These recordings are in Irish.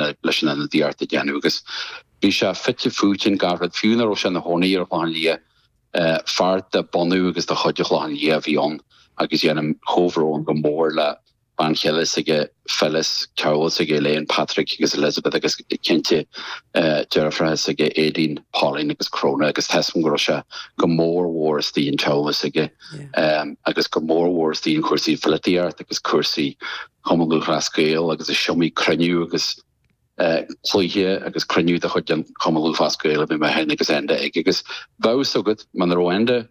leis an ionadaíocht a dhéanamh agus bhí sé fite fuaite in gach áit, fiú ina raibh sé ina chónaí ar an Chlochán Liath. Fear de bunadh agus de chuid an Chlochán Liath a bhí ann agus déanaim comhbhrón go mór le bean chéile s'aige Phyllis, teaghlach s'aige Elaine, Patrick agus Elizabeth agus cinnte deirfiúracha s'aige Aideen, Pauline agus Crona agus tá fhios agam go raibh sé go mór mhór istigh in teaghlach s'aige agus go mór mhór istigh in cúrsaí polaitíochta agus cúrsaí Chumann Lúthchleas Gael agus is iomaí cruinniú agus cluiche agus cruinniú de chuid an Chumann Lúthchleas Gael a bhí mé féin agus Enda ag agus bheadh fhios agat muna raibh Enda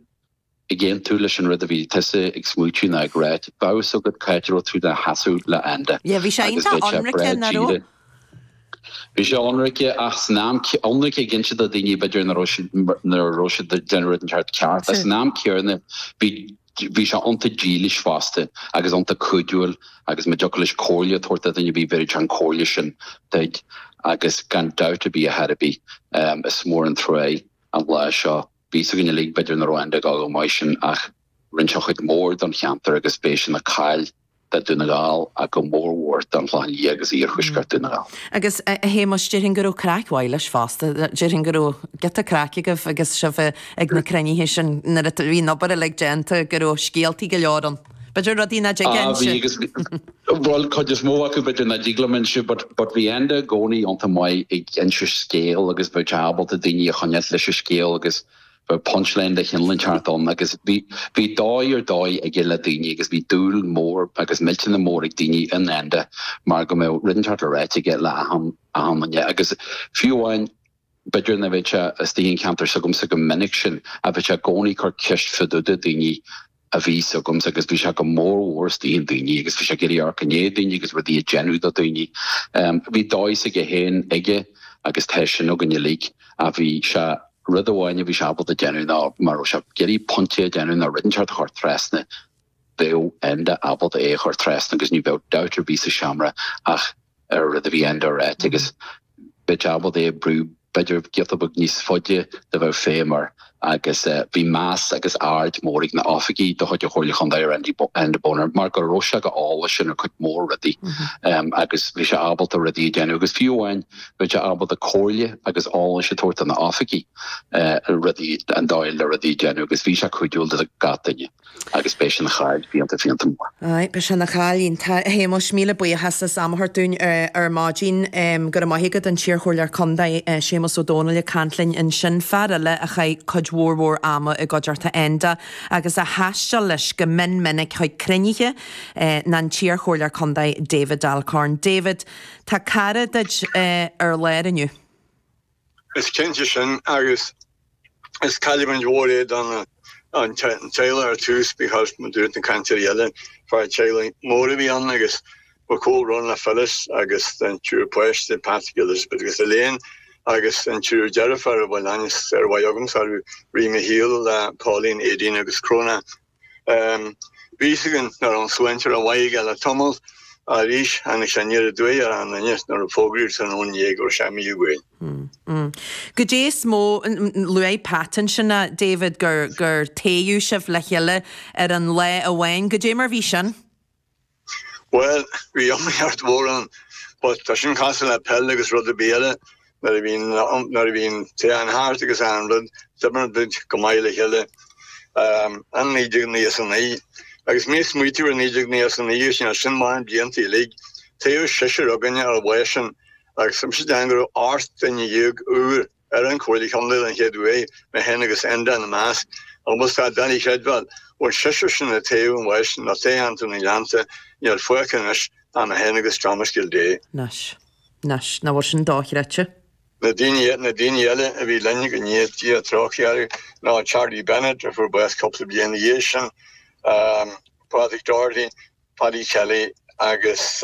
ag aontú leis an rud a bhí tusa ag smaoitiú ná ag rá, bheadh fhios agat c'áit a raibh tú do sheasamh le Enda agus bheadh sé breá díreach. Bhí sé ionraic ach san am céanna, ionraic ag inse do dhaoine b'fhéidir nach raibh siad, nach raibh siad ag déanamh rud inteacht ceart ach san am céanna bhí, Bhí sé iontach dílis fosta agus iontach cuidiúil agus má dtiocfadh leis comhairle a tabhairt do dhuine bhí bhéarfadh sé an comhairle sin duid agus gan dabht ar bith a Thaidhg bhí is mór an trua é an lá seo. Bhí fhios againn uilig b'fhéidir nach raibh Enda ag fáil chomh maith sin ach rinne sé cuid mhór don cheantar agus beidh sé ina chaill. do Dún na nGall ach go mór mhór don Chlochán Liath agus Iarthuaisceart Dhún na nGall. Agus, a Shéamais, déarfainn go raibh craic mhaith leis fosta. Déarfainn go raibh giota craic agaibh agus sibh ag na cruinnithe sin nuair a bhí an obair uilig déanta, go raibh scéaltaí go leor ann. B'fhéidir rudaí nach dtig Ah, bhí agus, bhuel, cuid is mó acu b'fhéidir nach dtig liom inse but, but bhí Enda i gcónaí iontach maith ag inse scéal agus bheadh sé ábalta daoine a choinneáilt leis an scéal agus Bhí punch line de chineál inteacht ann agus bhí bhí dóigh ar dóigh aige le daoine agus bhí dúil mhór agus millteanach mór ag daoine in Enda mar go mbeadh rud inteacht le ráite aige le achan achan duine agus fiú amháin b'fhéidir nach mbeadh sé istigh in ceantar s'agamsa chomh minic sin ach bheadh sé i gcónaí ag cur ceist fadúda daoine a bhí fhios agamsa agus bhí sé go mór mhór istigh in daoine agus bhí sé ag iarraidh amharc i ndiaidh daoine agus rudaí a déanamh do daoine. Bhí dóigh s'aige féin aige agus tá sin againn uilig ach bhí sé, rud amháin a bhí sé ábalta déanamh ná má raibh sé ag iarraidh pointe a déanamh nó rud inteacht a chur trasna, bheadh Enda ábalta é a chur trasna agus ní bheadh dabht ar bith sa seomra ach. an rud a bhí Enda ag ráit agus bheadh sé ábalta é a bhrú b'fhéidir giota beag níos faide dá mbeadh feidhm air agus bhí meas agus aird mór ag na h-oifigí de chuid an Chomhairle Chontae ar Enda Bonner mar go raibh sé chomh heolach sin ar cuid mhór rudaí agus bhí sé ábalta rudaí a déanamh agus fiú amháin bhí sé ábalta comhairle agus eolas a tabhairt do na h-oifigí rudaí an dóigh le rudaí a déanamh agus bhí sé cuidiúil do gach duine. Agus beidh sé ina chaill fiánta fiánta mór. Aye, beidh sé ina chaill. Tá, a Shéamais, míle buíochas as am a thabhairt dúinn ar maidin. Go raibh maith agat, an t-iarchomhairleoir contae, Séamas Ó Domhnaill ag caint linn ansin, fear eile a chaith cuid mhór mhór ama i gcuideachta Enda agus a thaisteal leis go mion minic chuig cruinnithe ná an t-iarchomhairleoir contae David Alcorn. David, tá cara duit ar lár inniu. Is cinnte sin, agus is cailliúint mhór é don teaghlach ar tús, because mar a dúirt na cainteoirí eile, fear teaghlaigh mór a bhí ann agus mo chomhbhrón le Phyllis agus an triúr páiste, Patrick, Elizabeth agus Elaine, agus an triúr deirfiúr a bhfuil aithne sármhaith agamsa orthu, a Mhichelle, Pauline, Aideen agus Cróna. Bhí a fhios againn nach raibh an tsláinte rómhaith aige le tamall arís tháinig sé aniar aduaidh ar a'n nduine nuair a fógraíodh tráthnóna inné go raibh sé imithe uainn. Goidé is mó luaigh Pat ansin é, David, gur gur toghadh sibh le chéile ar an lá amháin. Goidé mar bhí sin? Bhuel, bhí iomaíocht mhór ann, but tá sin cosúil le peil agus rud ar bith eile, nuair a bhíonn, nuair a bhíonn toghchán thart agus achan rud, d'oibrigh muid go maith le chéile. Um, i naoi déag nócha is a naoi. Agus mé ag smaoitiú ar naoi déag nócha is a naoi, sin as sin maith an blianta uilig, toghadh seisear againne ar an lá sin, agus tá mise ag déanamh go raibh ocht nduine dhéag úr, ar an Chomhairle Chontae don chéad uair, mé féin agus Enda ina measc, agus tá sé doiligh a chreidbheáil, as an seisear sin a toghadh an lá sin i dtoghcheantar na nGleanntach, níl fágtha anois ach mé féin agus Thomas Gildea. Anois. Anois. Nach bhfuil sin dochreidte? Na daoine, na daoine eile a bhí linn, go ndéana Dia trócaire orthu, ná Charlie Bennett a fuair bás cúpla bliain ina dhiaidh sin, Pádraig Doherty, Paddy Kelly agus.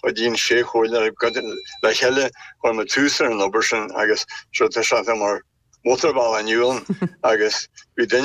Chuidíonn sé chomhairle le chéile, chuir muid tús ar an obair sin agus seo tá sé atá mar mótarbhealach inniu ann agus bhí duine